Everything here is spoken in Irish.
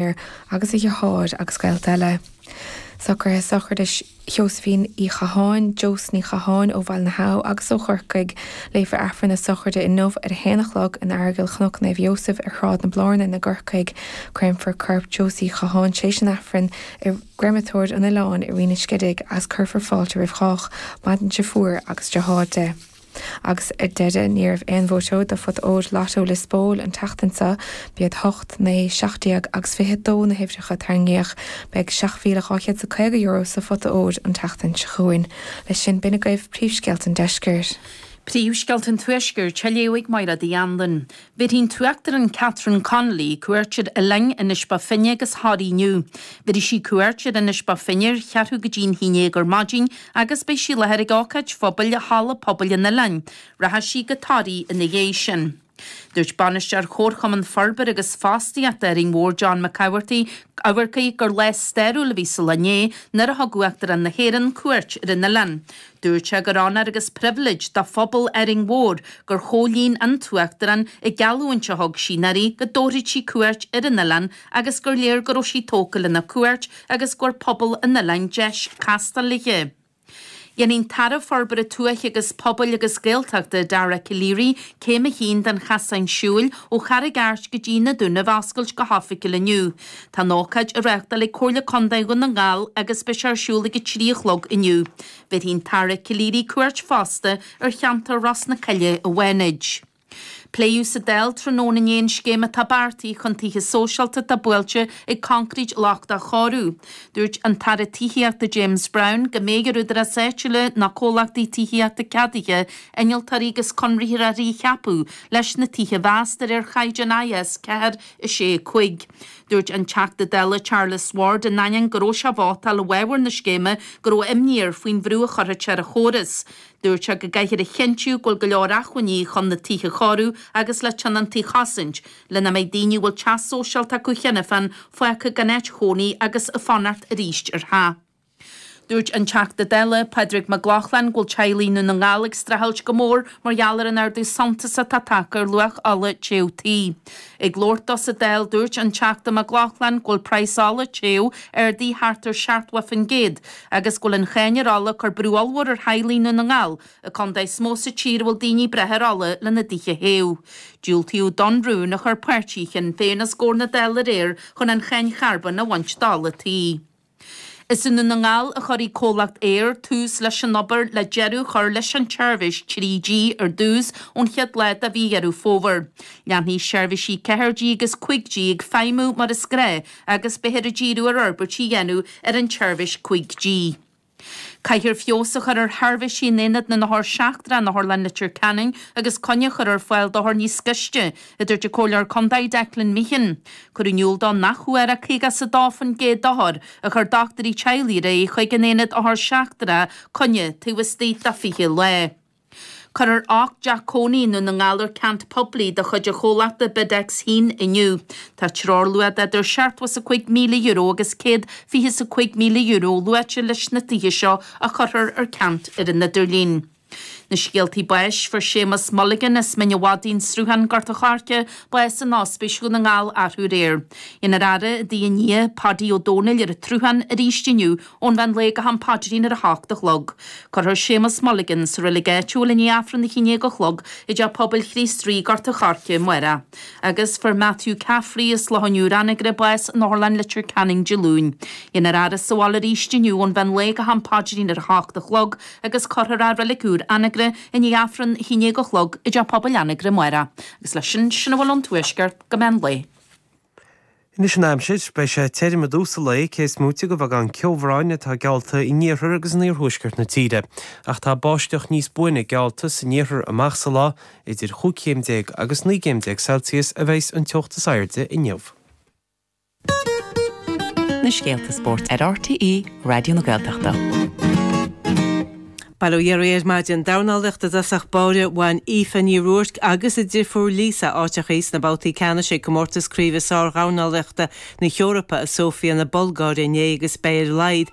Paor agus a dheartháir agus gaolta eile. Socruithe sochraide Sheosaimhín Uí Chatháin, Josie Ní Chatháin, ó Bhaile na hAbha agus ó Chorcaigh. Léifear Aifreann na sochraide inniu ar a haon a chlog in Aireagal Chnoc Naomh Iósaef ar Shráid na Blárnan i gCorcaigh. Créamfar corp Josie Uí Chatháin tar éis an Aifrinn i gCréamatóir an Oileáin i Rinn an Scidígh agus cuirfear fáilte roimh chách. Maireann a deirfiúr agus a deartháir. Agus ar deireadh, ní raibh aon bhuaiteoir do phota óir Lotto Lios Póil an tseachtain seo. B'iad hocht, naoi, seacht déag agus fiche dó na huimhreacha a tarraingíodh. Beidh €7,250 sa phota óir an tseachtain seo chugainn. Leis sin, b'in agaibh príomhscéalta an deiscirt. Príomhscéalta an tuaiscirt, a léifidh Máire Ní Anluain. Bhéarfaidh an tUachtarán Catherine Connolly cuairt ar Oileáin Inis Bó Finne agus Thoraí inniu. Beidh sí ar cuairt ar Inis Bó Finne ar cheathrú go dtí an haon déag ar maidin agus beidh sí i láthair ag ócáid phobail i halla pobail an oileáin. Rachaidh sí go Toraí ina dhiaidh sin. Dúirt Bainisteoir Chomharchumann Forbartha agus Fostaíochta Árainn Mhór John Mac Eachmharcaigh gur lá stairiúil a bhí sa lá inné nuair a thug Uachtarán na hÉireann cuairt ar an oileán. Dúirt sé gur onóir agus pribhléid do phobal Árainn Mhór gur chomhlíon an tUachtarán an gheallúint a thug sí anuraidh go dtabharfadh sí cuairt ar an oileán agus gur léir go raibh sí tógtha lena cuairt agus go bhfuair pobal an oileáin deis casadh léithe. Dhéanfaidh an tAire Forbartha Tuaithe agus Pobail agus Gaeltachta, Dara Calleary, céim a haon den Chasán Siúil ó Charraig Airt go dtí na Dúnaibh a oscailt go hoifigiúil inniu. Tá an ócáid á reáchtáil ag Comhairle Contae Dhún na nGall agus beidh sé ar siúl ag a trí a chlog inniu. Bhéarfaidh an tAire Calleary cuairt fosta ar cheantar Ros na Cille i bhFánaid. Pléadh sa Dáil tráthnóna inné an scéim atá beartaithe chun tithe sóisialta atá buailte ag coincréit lochtach a chóiriú. Dúirt an tAire Tithíochta James Browne go mbeidh ar údaráis áitiúla nó comhlachtaí tithíochta ceadaithe, innealtóirí agus conraitheoirí a cheapadh leis na tithe a mheas de réir chaighdeáin IS4 a sé a cúig. Dúirt an Teachta Dála Charles Ward in ainneoin go raibh sé ag vótáil i bhfabhar na scéime go raibh imní air faoin bhrú a chuirfeadh sé ar an chóras. Dúirt sé go gcaithfear a chinntiú go bhfuil go leor acmhainní chun na tithe a chóiriú agus le tionóntaí a chosaint, le nach mbeidh daoine a bhfuil teach sóisialta acu cheana féin fágtha gan áit chónaí agus ag fanacht arís ar theach. Dúirt an Teachta Dála, Pádraig Mac Lochlainn go bhfuil teaghlaigh i nDún na nGall ag streachailt go mór mar gheall ar an ardú suntasach atá tagtha ar luach ola téamh tí. Ag labhairt dó sa Dáil, dúirt an Teachta Mac Lochlainn go bhfuil praghas ola téamh ardaithe thart ar 70% agus go bhfuil an cháin ar ola ag cur brú ollmhór ar theaghlaigh i nDún na nGall, an contae is mó sa tír a bhfuil daoine ag brath ar ola lena dtithe a théamh. Diúltaíodh don rún a chuir páirtí Shinn Féin os gcomhair na Dála aréir chun an cháin charbóin a bhaint d'ola téamh. Is i nDún na nGall a chuirfidh comhlacht Eir tús leis an obair le deireadh a chur leis an tseirbhís 3G ar dtús ón chéad lá de mhí Dheireadh Fómhair. Leanfaidh seirbhísí 4G agus 5G ag feidhmiú mar is gnáth agus beifear ag díriú ar fhorbairt a dhéanamh ar an tseirbhís 5G. Caithfear feabhas a chur ar sheirbhísí in Aonad na nOthar Seachtrach in Otharlann Leitir Ceanainn agus coinní a chur ar fáil d'othair níos gaiste, a dúirt an comhairleoir contae Declan Meehan. Cuireadh in iúl dó nach bhfuair ach 52% d'othair a chuir dochtúirí teaghlaigh ar aghaidh chuig an aonad othar seachtracha coinne taobh istigh de 20 lá. Cuirfear ocht dteach cónaithe i nDún na nGall ar ceant poiblí de chuid an chomhlachta BidX a hAon inniu. Tá treoirluach idir seachtó is a cúig míle euro agus céad fiche is a cúig míle euro luaite leis na tithe seo a chuirfear ar ceant ar an idirlíon. Na scéalta báis, Fuair Séamas Mulligan as Mín an Mhadaidh, An Sruthán, Gort an Choirce, bás in Ospís Dhún na nGall arú aréir. Déanfar a fhaire i dtigh a nia Páidí Ó Domhnaill ar an tSruthán arís inniu ón mheán lae go ham paidrín ar a hocht a chlog. Cuirfear Séamas Mulligan sa reilig áitiúil i ndiaidh Aifreann a haon déag a chlog i dTeach Pobail Chríost Rí, Gort an Choirce, amárach. Agus fuair Matthew Caffrey as Loch an Iúir, Anagaire, bás in Otharlann Leitir Ceanainn Dé Luain. Déanfar a fhaire sa bhaile arís inniu ón mheán lae go ham paidrín ar a hocht a chlog. agus cuirfear i reilig úr Anagaire é i ndiaidh Aifreann a haon déag a chlog i dteach pobail Anagaire amárach, agus leis sin, sin a bhfuil ón Tuaisceart go meán lae. Anois an aimsir, beidh sé tirim i dtús a' lae, cé is móite de bheagán ceobhráin atá geallta in iarthar agus in iarthuaisceart na tíre, ach tá báisteach níos buaine geallta san iarthar amach sa lá, idir chúig chéim déag agus naoi gcéim déag Celsius a bheidhs an teocht is airde inniu. na scéalta spóirt ar RTÉ Raidió na Gaeltachta. Bail ó Dhia oraibh ar maidin dornálaíocht i dtosach báire bhain Aoife Ní Ruairc agus a deirfiúr Lisa áiteachaí sna babhtaí ceannais ag Comórtas Craoibhe Sár-Dhornálaíochta na hEorpa i Sofia na Bulgáire inné agus beidh ar a laghad